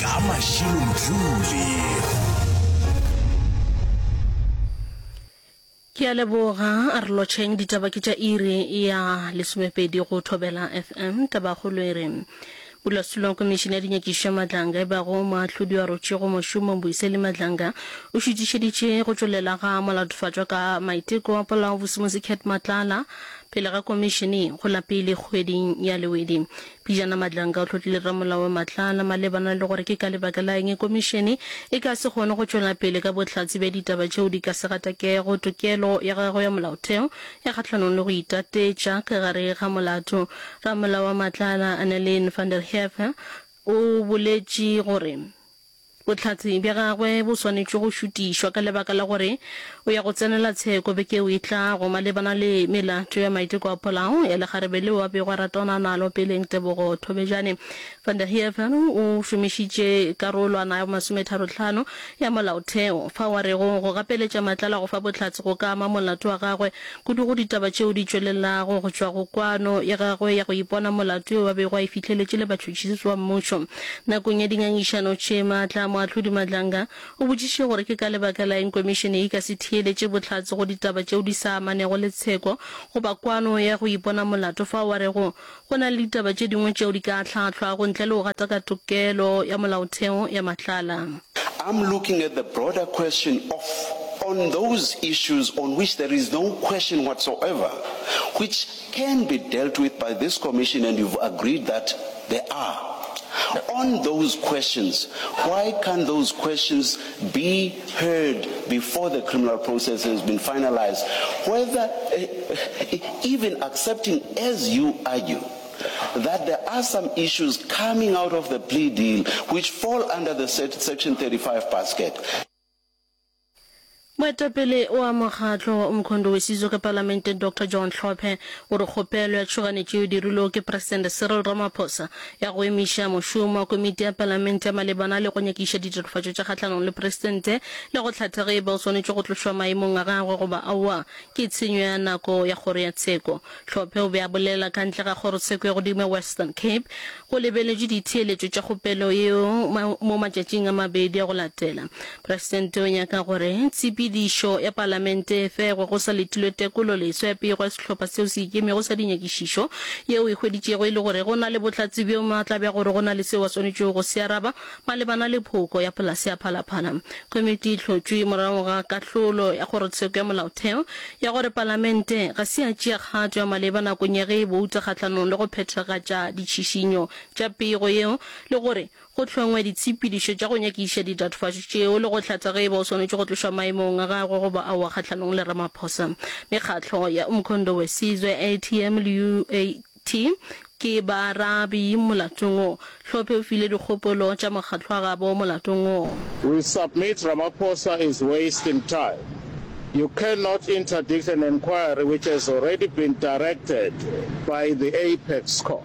ka mašilomjule ke a leboga a re lotšheng ditaba ke tša iri ya lesomepedi go thobela fm tabagolo e re Bulasulong Komišene ya Dinyakišo ya Madlanga e bago moahlodi wa rotšego mošomong Boiseli Madlanga o šutišeditše go tšwelela ga molatofatšwa ka maiteko a polao Bosimosi Cat Matlala pele ga komišene go la pele kgweding ya Lewedi. Pejana Madlanka o hlotlile ramolao wa Matlala malebana le gore ke ka lebaka la eng komišene e ka se kgone go tšwela pele ka bohlatse bja ditaba tšeo di ka se gatakego tokelo ya gagwe ya molaotheo ya kgahlanong le go itatetša ka gare ga molato. Ramolao wa Matlala, Annelien van der Heever, o boletše gore Bohlatse bja gagwe bo swanetše go šutišwa ka lebaka la gore o ya go tsenela tsheko beke yeo e tlago malebana le melato ya maiteko a polao ya lekgarebe leo a bego a ratana nalo peleng. Tebogo Thobejane van der Heever o šomišitše karolwana ya bomasometharo-tlhano ya Molaotheo fao a rego go gapeletša Matlala go fa bohlatse go ka ama molato wa gagwe Kudu go ditaba tšeo di tšwelelago go tšwa go kwano ya gagwe ya go ipona molato yo a bego a e fihleletše le batšhotšhisi ba mmušo. Nakong ya dingangišano tše maatla, Moahlodi Madlanga o botšišitše gore ke ka lebaka la eng komišene e ka se theeletše bohlatse go ditaba tšeo di sa amanego le tsheko goba kwano ya go ipona molato fao a rego Go na le ditaba tše dingwe tšeo di ka ahlahlwago ntle le go gataka tokelo ya molaotheo ya matlala. I'm looking at the broader question of on those issues on which there is no question whatsoever which can be dealt with by this commission and you've agreed that there are on those questions why can't those questions be heard before the criminal process has been finalised, whether even accepting as you argue that there are some issues coming out of the plea deal which fall under the section 35 basket. Moetapele wa mokgatlo o mokhondo we Sizwe ka Palamente Doctor John Hlophe o re kgopelo ya tšhoganetšo yeo dirilwego ke Presidente Cyril Ramaphosa ya go emiša mošomo wa komiti ya palamente malebana le go nyakiša ditatofatšo tša kgahlanong le presidente le go hlatha ge e ba o swanetše go tlošwa maemong a gagwe goba aowa ke tshenyo ya nako ya kgoro ya tsheko. Tlhophe o be a bolela ka ntle ga kgorotsheko ya godimo ya Western Cape. Go lebeletšwe ditheeletšo tša kgopelo yeo mo matšatšing a mabedi a go latela. Presidente o nyaka gore tshepedišo ya Palamente e fegwe go sa letilwe tekolo leso ya pego ya sehlopha seo se ikemego sa dinyakišišo yeo e hweditšego e le gore go na le bohlatse bjo maatla bja gore go na le seo a swanetšego go se araba malebana le phoko ya polase ya Phalaphala. Komiti e hlotšwe morago ga kahlolo ya Kgorotsheko ya Molaotheo ya gore Palamente ga se ya tšea kgato ya maleba nakong ya ge e bouta kgahlanong le go phethagatša ditšhišinyo tša pego yeo le gore go hlongwe ditshepedišo tša go nyakiša ditatofatšo tšeo le go hlatha ge e ba o swanetše go tlošwa maemong a gagwe goba aowa kgahlanong le Ramaphosa. Mekgatlo ya Umkhondo Wesizwe, ATM, le UAT ke baarabi molatong wo. Hlophe o file dikgopolo tša mokgatlo wa gabo molatong wo. We submit Ramaphosa is wasting time. You cannot interdict an enquiry which has already been directed by the Apex Court.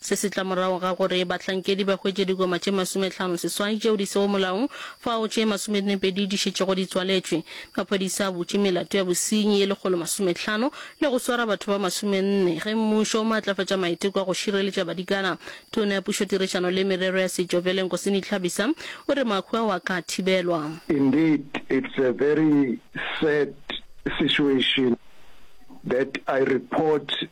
Se se tla morago ga gore bahlankedi ba hwetše dikoma tše masometlhano seswai tšeo di sego molaong fao tše masomenepedi di šetšego di tswaletšwe. Maphodisa a butše melato ya bosenyi ye lekgolo masometlhano le go swara batho ba masomenne ge mmušo o maatlafatša maiteko a go šireletša badikana. Tona ya Pušo Tirišano le Merero ya Setšo Vele Nkosini Tlhabisa o re mahwi ao a ka thibelwa. Indeed it's a very sad situation that I report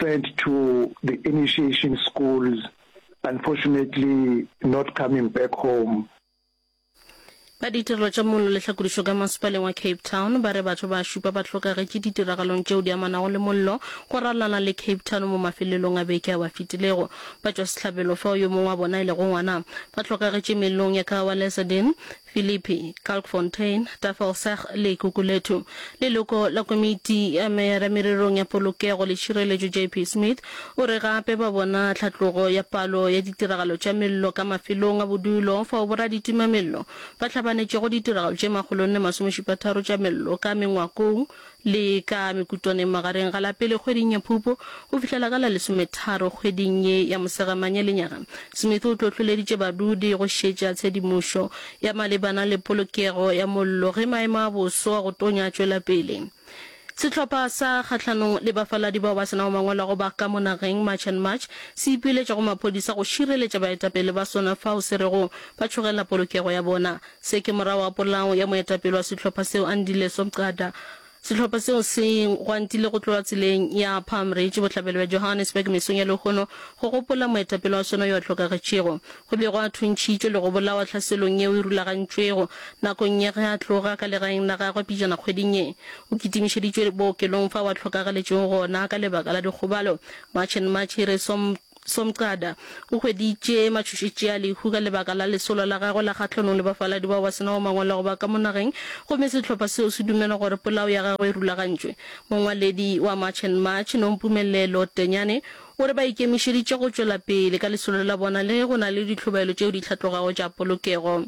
sent to the initiation schools unfortunately not coming back home. Ba ditirelo tša mollo le tlhakodišo ka masepaleng wa Cape Town ba re batho ba šupa ba hlokagetše ditiragalong tšeo di amanago le mollo go ralala le Cape Town mo mafelelong a beke ao a fetilego. Batšwasehlabelo, fao yo mongwe wa bona e lego ngwana, ba hlokagetše mellong ya Kaawa Leserdene, Philippi, Kalkfontein, Tafelsig le Gugulethu. Leloko la komiti ya meyara mererong ya polokego le tšhireletšo JP Smith o re gape ba bona tlhatlogo ya palo ya ditiragalo tša mello ka mafelong a bodulo fao boraditima-mello ba hlabanetšego ditiragalo tše makgolonne masomešupatharo tša mello ka mengwakong Le ka mekutwaneng magareng ga la pele kgweding ya Phupu go fihlela ka la lesometharo kgweding ye ya Mosegamanye lenyaga, Smith o tlotloleditše badudi go šetša tshedimošo ya malebana le polokego ya mollo ge maemo a boso a go tonya a tšwela pele. Sehlopha sa kgahlanong le bafaladi bao ba se nago mangwalo a go ba ka mo nageng, March and March, se ipiletša go maphodisa go šireletša baetapele ba sona fao se rego ba tšhogela polokego ya bona. Se ke morago ga polao ya moetapele wa sehlopha seo, Andy Leso Mqada. Sehlopha seo se gwantile go tloga tseleng ya Palm Ridge bohlabela bja Johannesburg mesong ya lehono go gopola moetapele wa sona yo a hlokagetšego. Go be gwa thuntšhitšwe le go bolawa tlhaselong yeo e rulagantšwego nakong ye ge a tloga ka legaeng la gagwe pejana kgweding ye. O kitimišeditšwe bookelong fao a hlokagaletšego gona ka lebaka la dikgobalo. March and March e re som Somqada o hweditše matšhošetši a lehu ka lebaka la lesolo la gagwe la kgahlanong le bafaladi bao ba se nago mangwalo a go ba ka mo nageng gomme sehlopha seo se dumela gore polao ya gagwe e rulagantšwe. Mongwaledi wa March and March, Nompumelelo Tenyane, o re ba ikemišeditše go tšwela pele ka lesolo la bona le ge go na le ditlhobaelo tšeo di hlatlogago tša polokego.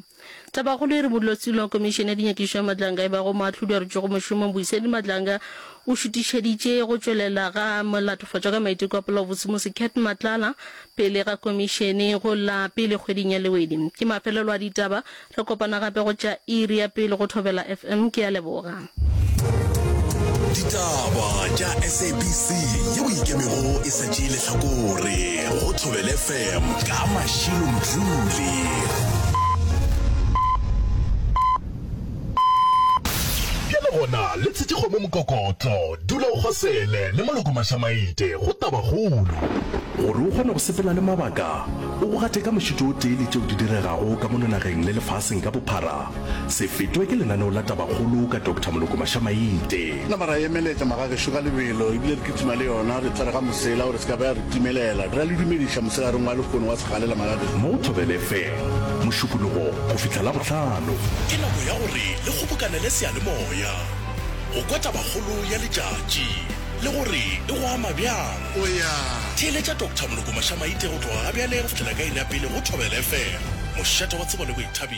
Tabakgolo e re Modulasetilo wa Komišene ya Dinyakišišo ya Matlanga ebago moahlodi a rutšwego mošomong Boiseni Matlanga o šutišeditše go tšwelela ga Molatofatšwa ka Maiteko a Polaobotse Musi Cat Matlala pele ga Komišene go la pele kgweding ya Lewedi. Ke mafelelo a ditaba. Re kopana gape go tša iri ya pele go Thobela FM. Ke a leboga. ditaba tša sabc yeo ikemego e sa tšee lehlakore go thobele fm ka mašilo mdluli bjale gona le tshetše kgomo mokokotlo dula o kgosele le maloko mašamaite go tabakgolo gore o kgone go sepela le mabaka o go gate ka mošito o tee le tšeo di diregago ka mononageng le lefaseng ka bophara Se fetwe ke lenaneo la Tabakgolo ka Doctor Moloko Mashamainte. Nama ra emeletša magagešo ka lebelo ebile re kitima le yona re tsere ga mosela gore se ka ba ya re timelela. Re a le dumediša moselareng wa lekgono wa segalela magagešo. Mo Thobel FM, Mošupologo go fihla Labohlano. Ke nako ya gore le kgobokanele seyalemoya go kwa Tabakgolo ya letšatši le gore e go ama bjang. O ya theeletša Doctor Moloko Mashamainte go tloga ga bjale go fihlela ka iri ya pele go Thobel FM, mošate wa tsebo le boithabišo.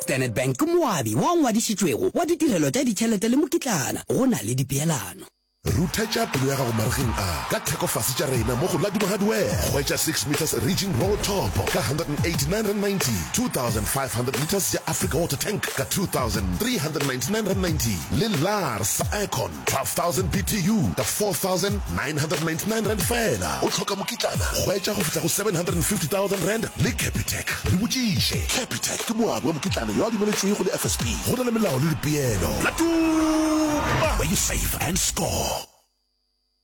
Standard Bank ke moabi wo o ngwadišitšwego wa ditirelo tša ditšhelete le mokitlana go na le dipeelano. Ruthetša pelo ya gago marigeng a ka thekofase tša rena mo go la Dubahardware. Hwetša six metres Ridging Road Top ka R189.90, 2,500 litres ya Africa Water Tank ka R2,399.90 le Lars sa Aircon 12,000 BTU ka R4,999 fela. O hloka mokitlana? Hwetša go fihla go R750,000 le Capitec. Re botšiše, Capitec ke moabi wa mokitlana yo a dumeletšwego le FSB. Go na le melao le dipeelo. Latuma! Where you save and score.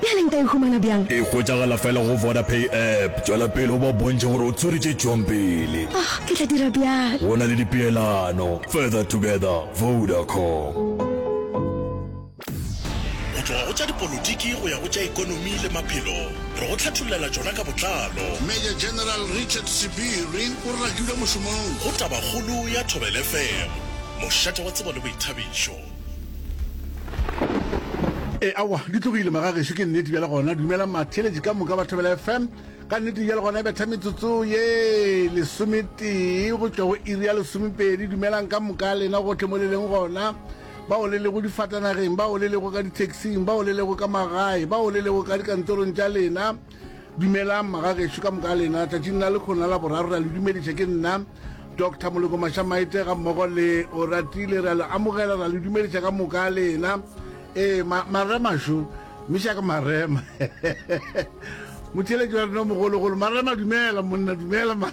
Bjale nka e humana bjang? E hwetšagala fela go Vodapay app. Tšwela pele o ba bontšhe gore o tswere tše tšwang pele. Oh, ke tla dira bjalo. Go na le dipeelano. Further together, Vodacom. Go tloga go tša dipolotiki go ya go tša ekonomi le maphelo, re go hlathollela tšona ka botlalo. Major General Richard Sibiri o rakilwe mošomong. Go Tabakgolo ya Thobela FM, mošate wa tsebo le boithabišo. e awa di tlogile magageso ke nnete bjale gona dumela matheletši ka moka ba thobela fm ka nnete bjale gona e betha metsotso ye lesometee go tšwa go iri ya lesomepedi dumelang ka moka lena gotlhe mo le leng gona bao le lego difatanageng bao le lego ka ditaxing bao le lego ka magae bao le lego ka dikantorong tša lena Dumelang magagešo ka moka lena tšatšing la lekhona la boraro ra le dumediša ke nna Dr Moleko Mashamaite ga mmogo le Oratile ra le amogela ra le dumediša ka moka lena ee ma, marema šo miša ka marema motheletši wa rena mogologolo marema dumela monna dumela ma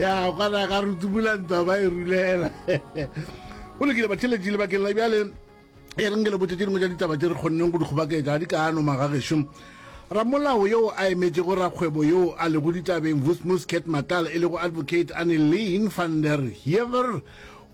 ya kwana ka re tumula ntwa ba e rulela o lekile batheletši lebakeng la bjale e reng ke le botse tše dingwe tša ditaba tše re kgonneng go di kgobaketsa di ka ano magagešo ramolao yo a emetšego rakgwebo yo a lego ditabeng vusmus cat matal e lego advocate anelin van der hever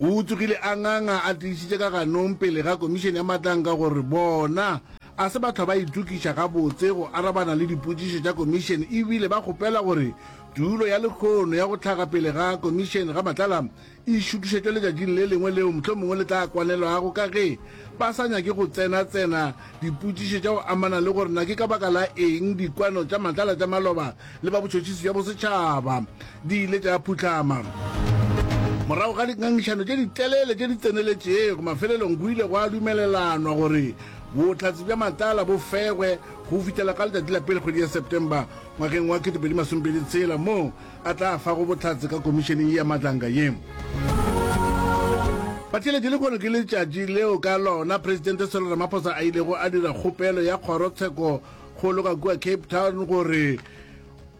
o tsogile a nganga a tiišitše ka ganong pele ga komišene ya matlang ka gore bona A se batho ba itokiša gabotse go arabana le dipotšišo tša Komišene e bile ba kgopela gore tulo ya lekgono ya go hlaga pele ga Komišene ga matlala e šutišetšwe letšatšing le lengwe leo mohlomongwe le tla kwanelwago ka ge ba sa nyake go tsenatsena dipotšišo tša go amana le gore na ke ka baka la eng dikwano tša matlala tša maloba le ba botšhotšhisi bja bosetšhaba di ile tša phuhlama. Morago ga dingangišano tše ditelele tše di tseneletšego, mafelelong go ile gwa dumelelanwa gore bohlatse bja matala bo fegwe go fihlela ka letšatši la pele kgwedi ya September ngwageng wa 2026 moo a tla fago bohlatse ka komišeneng ye ya matlanka ye. Batheeletši lehono ke letšatši leo ka lona Presidente Cyril Ramaphosa a ilego a dira kgopelo ya kgorotsheko go loka kua Cape Town gore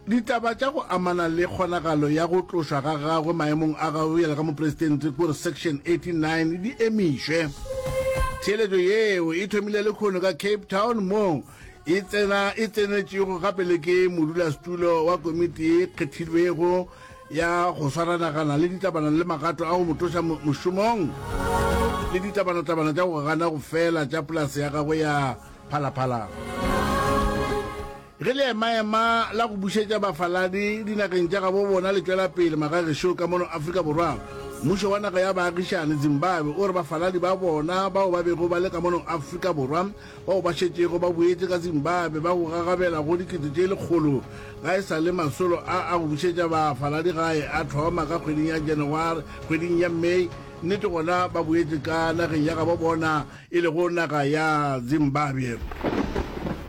ditaba tša go amana le kgonagalo ya go tlošwa ga gagwe maemong a gago bjale ka moporesitente kore section 89 di emišwe theeletšo yeo e thomile le kgono ka cape town moo e tsena e tsenetšego gape le ke modulasetulo wa komiti e kgethilwego ya go swaranagana le ditabana le magato a go motloša mošomong le ditabanatabana tša go gana go fela tša polase ya gagwe ya phalaphala. Ge leemaema la go bušetša bafaladi dinageng tša gabo bona le tšwela pele magagešo ka mono Afrika Borwa, mmušo wa naga ya baagišani, Zimbabwe, o re bafaladi ba bona bao ba bego ba le ka mono Afrika Borwa bao ba šetšego ba boetše ka Zimbabwe ba go gagabela go dikete tše lekgolo ga e sa le masolo a a go bušetša bafaladi gae a thoma ka kgweding ya Janaware, kgweding ya May, nnete gona ba boetše ka nageng ya gabo bona. e lego naga ya Zimbabwe.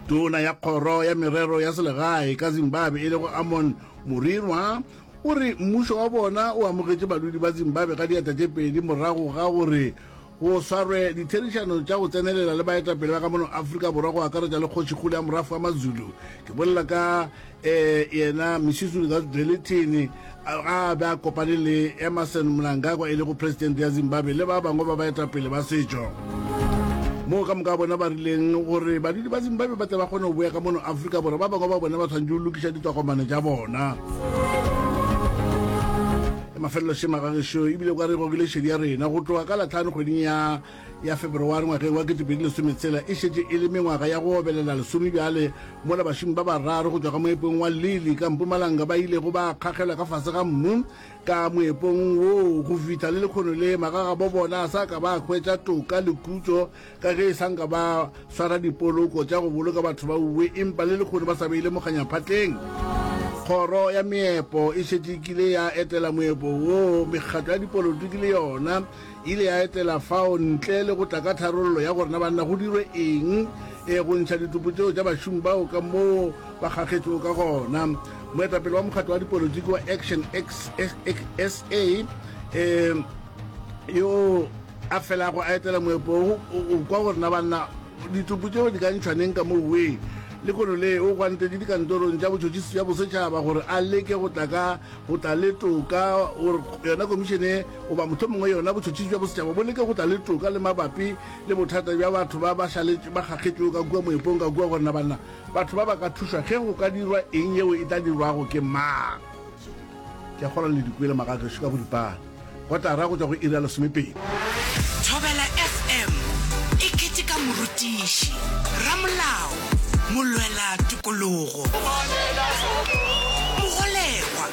Tona ya kgoro ya merero ya selegae ka Zimbabwe e lego Amon Murirwa o re mmušo wa bona o amogetše badudi ba Zimbabwe ka diatla tše pedi morago ga gore go swarwe ditherišano tša go tsenelela le baetapele ba ka mono Afrika Borwa go akaretša le kgošikgolo ya morafo wa Mazulu ke bolela ka eh, yena Misuzulu Zazwdelithini ga a be a kopane le Emmerson Mnangagwa e lego presidente ya Zimbabwe le ba bangwe ba baetapele ba setšo, moo ka moka bona ba rileng gore badudi ba Zimbabwe ba tle ba kgone go boya ka mono Afrika Borwa, ba bangwe ba bona ba swanetše go lokiša ditogomane tša bona. Mafelelo šema ga gešo ebile o ka re e gogile šedi ya rena go tloga ka Lahlano kgweding ya. ya Feberowari ngwageng wa 2010 tsela e šetše e le mengwaga ya go obelela lesome bjale mola bašomi ba bararo go tšwa ka moepong wa Lili ka Mpumalanga ba ilego ba kgagelwa ka fase ga mmu ka moepong woo go fihla le lekgono le magagabo bona a sa ka ba hwetša toka le khutšo ka ge e sa nka ba swara dipoloko tša go boloka batho ba uwe empa le lekgono ba sa beile mokganyaphatleng. Kgoro ya Meepo e šetše e kile ya etela moepo woo mekgatlo ya dipolotiki le yona E ile ya etela fao ntle le go tla ka tharollo ya gore na banna go dirwe eng, ee, go ntšha ditupu tšeo tša bašomi bao ka moo ba kgakgetšwego ka gona. Moetapele wa mokgatlo wa dipolotiki wa Action SA, ee, yo a felago a etela moepo wo, o kwa gore na banna ditupu tšeo di ka ntšhwa neng ka moo wee. Lehono le o gwantetše dikantorong tša botšhotšhisi bja bosetšhaba gore a leke go tla ka go tla le toka gore yona komišene Goba mohlomongwe yona botšhotšhisi bja bosetšhaba bo leke go tla le toka le mabapi le bothata bja batho ba ba šaletše ba kgakgetšwego ka kua moepong ka kua, gore na banna batho ba ba ka thušwa ge go ka dirwa eng yeo e tla dirwago ke mang. Ke a kgolwa le di kwele maga a gešo ka boripana. Kotara go tšwa go iri ya lesomepedi. Thobela FM e keteka morutiši, ramolao, molwela tokologo, mogolegwa.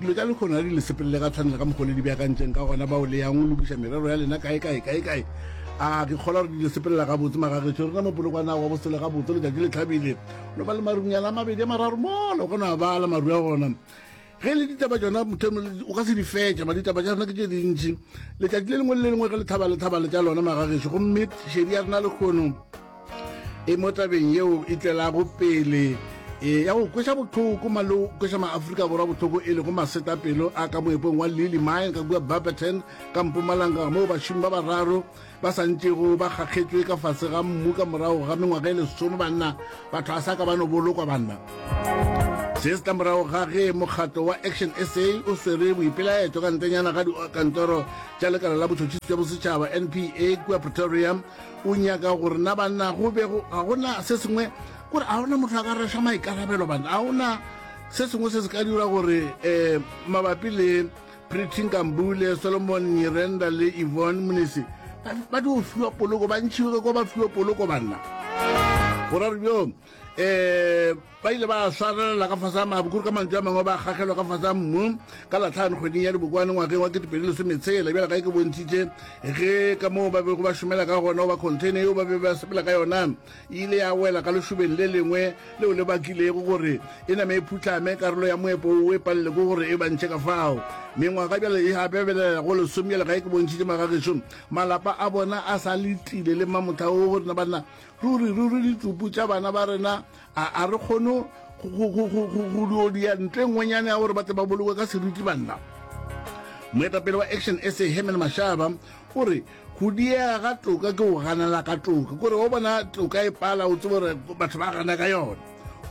dilo tša lekgono di le sepelele ga tshwanela ka mokgole di beakantseng ka gona bao le yang lokiša merero ya lena kae kae kae kae a ke kgola gore di le sepelela gabotse magagetšo rena mopolokwana wa bosele gabotse letšatši le tlhabile no ba le marunyana a mabedi a mararo mola o ka no a bala maru a gona ge le ditaba tsona mothemo o ka se di fetša ba ditaba tša rena ke tše dintši letšatši le lengwe le le lengwe ge lethaba lethaba le tša lona magagetšo gomme šedi ya rena lekgono e mo tabeng yeo e tlelago pele e ya go kwesa botlhoko malo kwesa maaforika borwa botlhoko e lego masetapelo a ka moepong wa lily mine ka kua barberton ka mpumalanga moo bašomi ba bararo ba santšego ba kgakgetswe ka fase ga mmu ka morago ga mengwaga e lesome banna batho a sa ka ba no bolokwa banna se se tla morago ga ge mokgatlo wa action sa o swere boipelaetso ka ntenyana ga dikantoro tša lekala la botšhotšhisi jwa bosetšhaba npa kua pretoria o nyaka gore na banna go be ga gona se sengwe gore a gona motho a ka reša maikarabelo banna a gona se sengwe se se ka dira gore um mabapi le pretty nkambule solomon nyirenda le evon monese ba di go fiwa poloko ba ntšhiwe ko ba fiwe poloko banna gorare bjong um ba ile ba swarelela ka fasa mabu kore ka mantšu a mangwe ba kgagelwa ka fasa mmu ka latlhano kgweding ya dibokwane ngwageng wa ketepedi lesometshela bjala gae ke bontšhitše ge ka moo ba bego ba šomela ka gona goba container yeo ba be ba sepela ka yona e ile ya wela ka lešobeng le lengwe leo le bakilego gore e name e phutlame karolo ya moepo o e palele ko gore e bantšhe ka fao mengwaga bjale e gabebelela go lesome bjale gae ke bontšhitše magagešo malapa a bona a sa letile le mamotlha o go rena banna Ruri, ruri ditsupu tša bana ba rena a, a re kgone go di odia ntle ngwenyane ya gore ba tle ba bolokwe ka seriti banna. Moetapele wa Action SA Herman Mashaba o re go diega ga toka ke go ganela ka toka kore o bona toka e pala o tsebe gore batho ba gana ka yona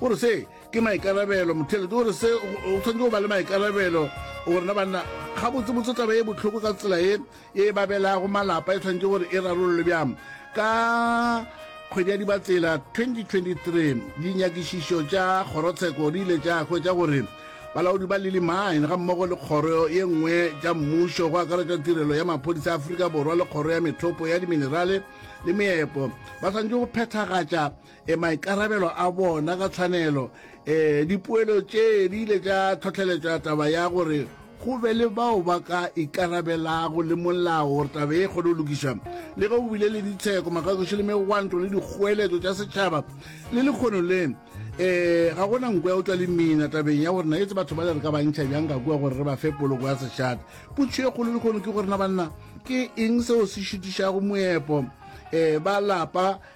o re se ke maikarabelo mothelete o re se o tshwanetse go ba le maikarabelo gorena banna gabotsebotse taba e botlhoko ka tsela e ye e babelago malapa e tshwanetse gore e rarollwe bjang ka kgwedi ya dibatsela 2023 dinyakišišo tša kgorotsheko di ile tša hwetša gore balaodi ba lily mine ga mmogo le kgoro ye nngwe tša mmušo go akaretša tirelo ya maphodisa a aforika borwa le kgoro ya methopo ya diminerale le meepo ba swanetše go phethagatša e maikarabelo a bona ka tshwanelo. E dipoelo tše di ile tša tlhotlheletša taba ya gore go be le bao ba ka ikarabelago le molao gore taba e kgone go lokiša. Le ge go bile le ditsheko, makakoši le megwanto le dikgoeletšo tša setšhaba le lekgono le, e ga go na nko ya go tšwa le mina tabeng ya gore na etse batho ba le re ka bantšha bjang ka kua gore re ba fe poloko ya sešate. Putšo e kgolo lekgono ke gore na banna ke eng seo se šitišago moepo e ba lapa.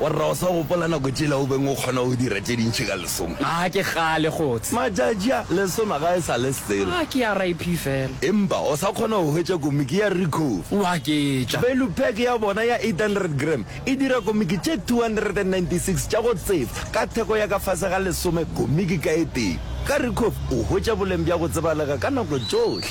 Warra, o sa gopola nako tšela o beng o kgona go dira tše dintši ka lesoma? Ga ke kgale, Kgots'e. Matšatši a, lesoma ga e sa le selo. Ga ke ya RIP fela. Empa o sa kgona go hwetša komiki ya Ricoh? Wa ke tša. Value pack ya bona ya 800 gram e dira komiki tše 296 tša go tsefa ka theko ya ka fase ga lesome komiki ka e tee. Ka Ricoh o hwetša boleng bja go tsebalega ka nako tšohle.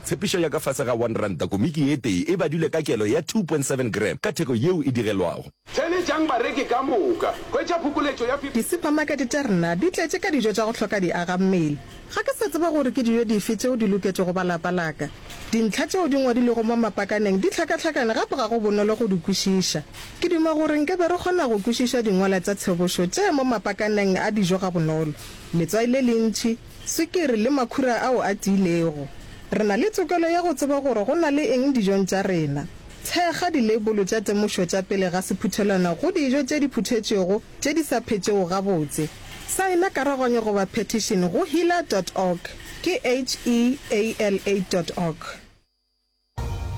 Tshepišo ya ka fase ga one ranta komiki ye tee e badilwe ka kelo ya two point seven gram ka theko yeo e digelwago. Theeletšang bareki ka moka. Hwetša phokoletšo ya. Disupamakete tša rena di tletše ka dijo tša go hloka diagammele. Ga ke sa tseba gore ke dijo dife tšeo di loketšego ba lapa la ka. Dintlha tšeo di ngwadilwego mo mapakaneng di hlakahlakane gape ga go bonolo go di kwešiša. Ke duma gore nke be re kgona go kwešiša dingwala tša tsebošo tše mo mapakaneng a dijo gabonolo. Letswai le lentši. Swikiri le makhura ao a tiilego. Re na le tokelo ya go tseba gore go na le eng dijong tša rena. Thekga dileibolo tša temošo tša pele ga sephuthelwana go dijo tše di phuthetšwego tše di sa phetšego gabotse. Saena karogwanyo goba petition go heala dot org, ke H-E-A-L-A dot org.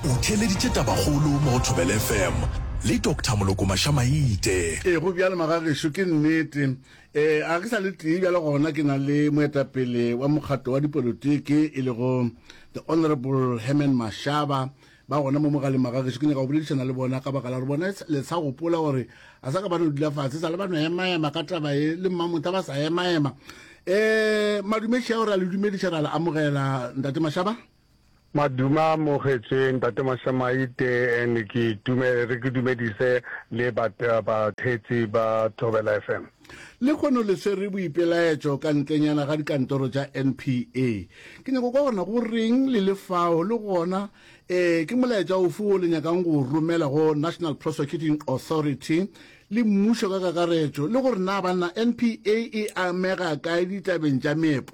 O theeleditše tabakgolo mo go Thobela FM le Doctor Moloko Mašamaite. Ee, go bjalo magagešo, ke nnete. Ee, a ke sa le tee bjalo gona ke na le moetapele wa mokgatlo wa dipolotiki e lego The Honourable Herman Mashaba ba gona mo mogaleng magagešo. Ke nyaka go boledišana le bona ka baka la gore bona le sa gopola gore a sa ka ba no dula fatshe sa le ba no emaema ka taba e le mmamotha ba sa emaema. Um madumeši ao re a le dumediša ra le amogela Ntate Mashaba. Maduma mo kgetše ntate Mashamaite and ke itume re ke dumedise le ba ba thetsi ba Thobela FM. Le kgono le swere boipelaetšo ka ntlenyana ga dikantoro tša NPA. Ke nyako kwa gona go reng le le fao le gona ee ke molaetša ofe wo le nyakang go o romela go National Prosecuting Authority le mmušo ka kakaretšo le gore na banna NPA e amega kae ditabeng tša meepo?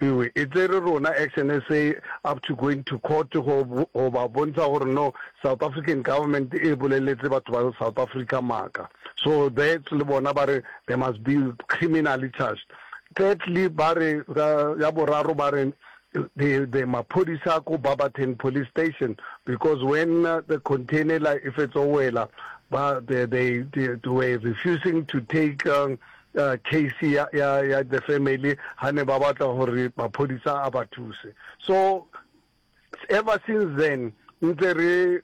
Ewe, e tsere rona XNSA up to going to court go go ba bontsha gore no South African government e boleletse batho ba South Africa maaka. So that le bona ba re they must be criminally charged. Thirdly ba re ka ya boraro ba re the the maphodisa ko Barberton police station because when the container ela e fetso wela ba they they they were refusing to take case ya ya ya the family ha ne ba batla hore maphodisa a ba thuse so ever since then ntse re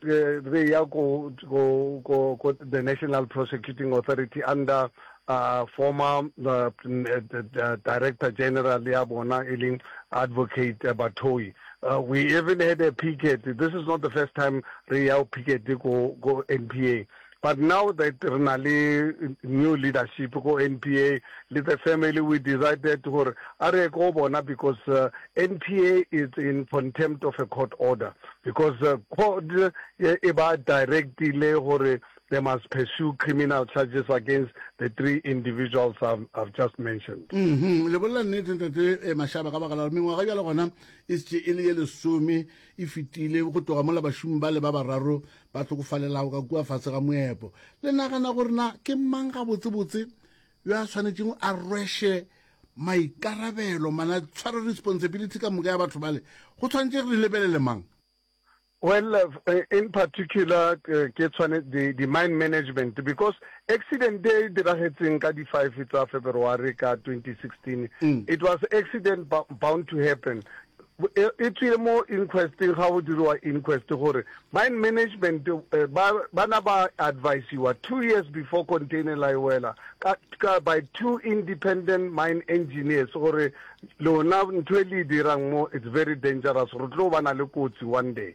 re ya ko ko ko the national prosecuting authority under uh, former uh, uh, director general ya bona e leng advocate uh, batoi uh, we even had a picket this is not the first time re ya picket ko ko npa But now that re na le new leadership ko NPA le the family we decided gore a re ye ko go bona because uh, NPA is in contempt of a court order because uh, court e, e ba directile gore they must pursue criminal charges against the three individuals I've, I've just mentioned. Mm -hmm. Le bolla nnete ntate e eh, mashaba ka baka la gore mengwaga bjale gona e setse e le ye lesome e fetile go tloga mola bašomi ba le ba bararo ba hlokofalelago ka kua fase ga moepo. Le nagana gore na ke mang gabotsebotse yo a swanetšeng a rweshe maikarabelo mana tshware responsibility ka moka ya batho bale? Go tshwanetše re lebelele mang? Well, uh, in particular, uh, ke tshwane the, the mine management because accident e diragetseng ka di 5 tsa February ka 2016 mm. it was accident bound to happen E e tswile mo inquesteng ga go diriwa inquest gore mine management ba bana ba advisiwa two years before container la e wela ka ka by two independent mine engineers gore lona ntho e le e dirang mo it's very dangerous re tlo bana le kotsi one day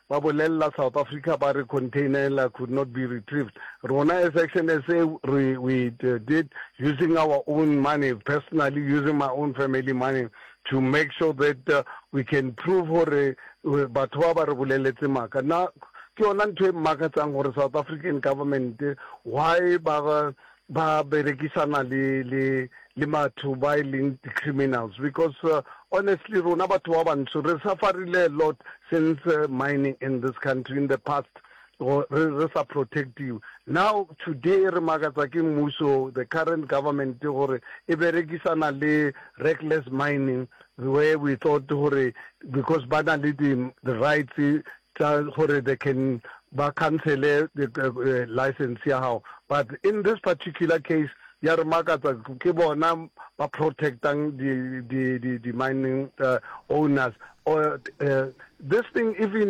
Ba bolelela South Africa ba re containela could not be retrieved. Rona as Action SA re we did using our own money, personally using my own family money to make sure that we can prove gore batho ba ba re boleletse maaka. Na ke yona ntho e mmakatsang gore South African government why ba ba berekisana le le le batho ba e leng di criminals because uh, honestly rona batho ba bantsho re sufferile a lot since uh, mining in this country in the past or re re sa protective now today re makatsa ke mmuso the current government gore e berekisana le reckless mining where we thought gore because ba na le the rights tsa gore they can ba cancele license ya gago but in this particular case ya re makatsa ke bona ba protectang di di di di mining owners or this thing even